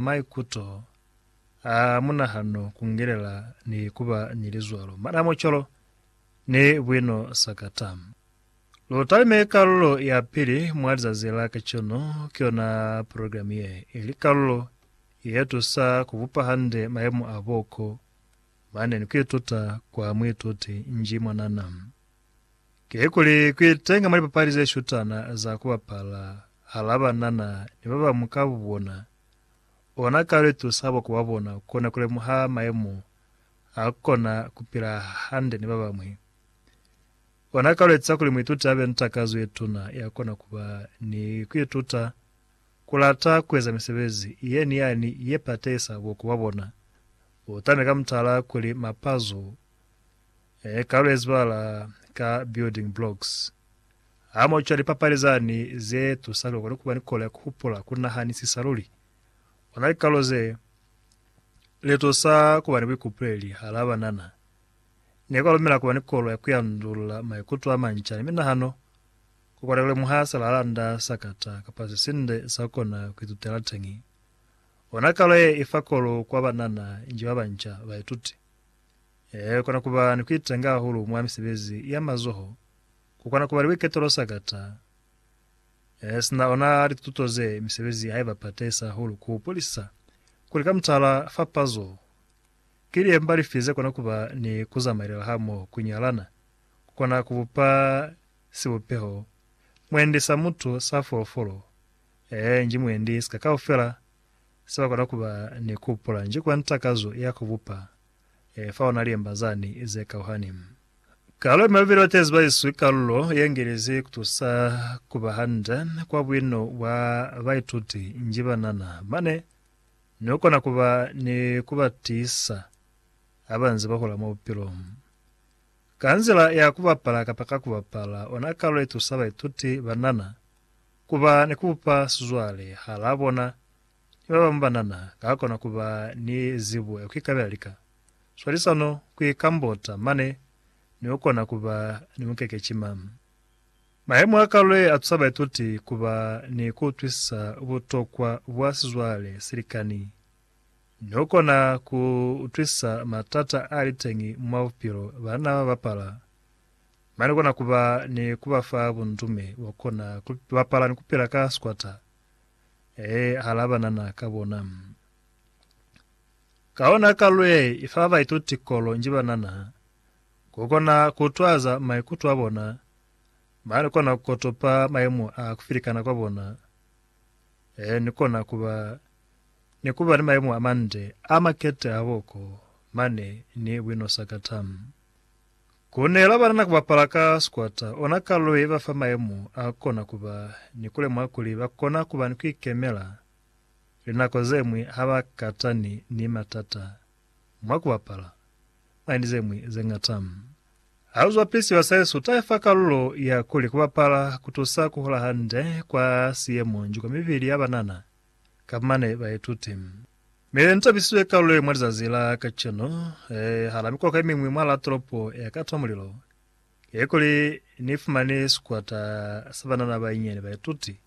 maikuto, a munahano, kungelela ni kuba ni lizwalo, madamo, colo, ni buino sakata. Lu talime kalulo ya pili mwa lizazi la kacenu, ki yona progilamu ye, ili kalulo ye tusa ku bupa hande mayemo a boko mane ni ku ituta kwa muituti nji mwanana. Kikuli kuitenga mwa lipapali zeshutana za kubapala hala banana ni babañwi ka bubona, ona kalo itusa bokuba bona kona kulemuha maemo a kukona kupila hande ni babañwi. Ona kalo etiza kuli muituti abe ni takazo yetuna yakona kuba ni kuituta kulata kueza misebezi ye ni yani ye patehisa bokuba bona. Utame ka mutala kuli mapazo, Ee, ka lwe zibala ka building blocks. Ha mo cwa lipapali zani ze tusa luli ukone kuba ni kolo ya kuhupula, kunahanisisa luli. Ona likalo ze li tusa kuba ni buikupuleli hala banana. Ne kwa lumela kuba ni kolo ya kuyandulula maikuto a manca ni minahano, kukona kulemuha silahalanda sa kata kapa sisinde sa kukona kuitutela teñi. Ona kalo ye ifa kolo kwa banana nji babanca, baituti. Ee, ku kona ku ba ni ku itenga hahulu mwa misebezi ya mazoho. Ku kona ku ba ni buiketo lo sa kata. Ee, sina ona lituto ze, misebezi ha i ba patahisa hahulu ku hupulisa kuli ka mutala, fapazo ki liemba lifi ze kona ku ba ni ku zamailela hamoho. Ku nyalana ku kona ku bupa sibupeho mwendi sa mutu, sa folofolo, ee, nji mwendi sika kaufela se ba kona ku ba ni ku hupula nji kwa ntakazo ya ku bupa. e fa ona liemba zani ze kauhani. Kalo ye mabeli batezi ba iswi kalulo ye ngelezi kutusa kuba hande kwa buino bwa baituti nji banana, mane ni ukona kuba ni kuba tiisa habanze bahula mwa bupilo. Ka nzila ya kubapala kapa ka kubapala ona kalulo itusa baituti banana kuba ni kubupa sizwale hala bona Ni ba bañwi banana ka kona ku ba ni zibo ya ku ikabela lika, swalisano, ku ikambota, mane ni ku kona ku ba ni mukekecima. Mahemo a kalo ye a tusa baituti ku ba ni ku utwisisa butokwa bwa sizwale se likani ni ku kona ku utwisisa matata a li teñi mwa bupilo banna ba bapala. Mane ku kona ku ba ni ku ba fa bundume bwa ku kona ku bapala ni ku pila ka sikwata. Ee, a alaba nana ka bona. Ka ona kalu ye i fa baituti kolo nji ba nana ku kona ku twaza maikuto a bona, ba kona ku kotopa mayemo a ku filikana kwa bona, ee, ni kona ku ba ni ku ba ni mayemo a mande a makete hahoo ko mane ni buinosakata. Ku nela banana ku bapala ka sikwata ona kalulo ye ba fa mayemo a kona ku ba ni ku lemuha kuli ba kona ku ba ni ku ikemela linako ze ñwi ha ba katani ni matata mwa ku bapala. Mwa ni ze ñwi ze ñata, ha lu zwa pisiwa se su ta fa kalulo ya kuli ku bapala ku tusa ku hula hande kwa siyemonjiko mibili ya banana. Ka mane baituti ne ba tabisize ka luli mwa lizazi la kacenu, hala mikoko ye miñwi mwa la tolopo ya ka twa mulilo, kekuli ni fumani sikwata sa banana ba inyani baituti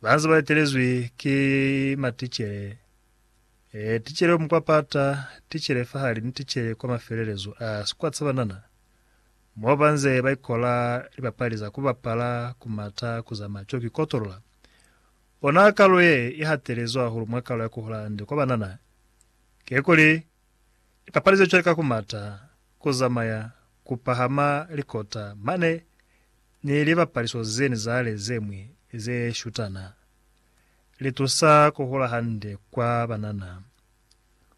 ba nze ba etelezwi ki maticele, ticele yo mukwa pata, ticele fahali ni ticele kwa mafelelezo a sikwata sa banana, mo ba nze ba ikola lipapali za ku bapala, ku mata, ku zamaya cwale ku ikotolola. Ona kalo ye i hatelezwi hahulu mwa kalo ya ku hula hande kwa banana kikuli lipapali ze cwale ka ku mata, ku zamaya, ku pahama likota mane ni libapaliso zeñwi za hale ze ñwi ze shutana, li tusa ku hula hande kwa banana.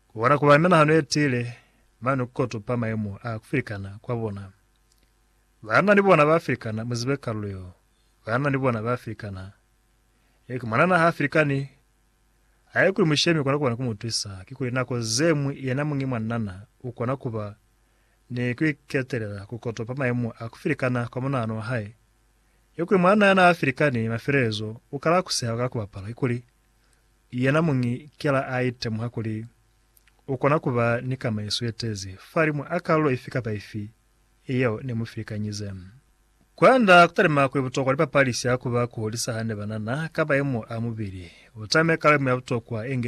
Ku kona ku ba ni minahano ye tiile mane ku tupa mayemo a ku filikana kwa bona. Banana ni bona ba filikana, mu zibe kalo yeo. Banana ni bona ba Afrikana. Eki mwanana ha Afrikani. Haikuli mushemi ukona kuba ni kumutwisa, kikuli nako zeñwi yena muñi mwanana ukona kuba ni kuiketelela kukotopa maimo a kufilikana kwa munahano wa hae. Kikuli mwanana yana Afrikani mafelelezo ukala kuseha ka kubapala, kikuli yena muñi kela a itemuha kuli ukona kuba ni kamaiso yetezi fahalimu a kalulo ifi kapa ifi yeo ne mu filikanyize. Kwanda kutalima kuli butokwa lipapali sha kuba kuhulisa hande banana ka mayemo a mubili. Utame kale mu ya butokwa inge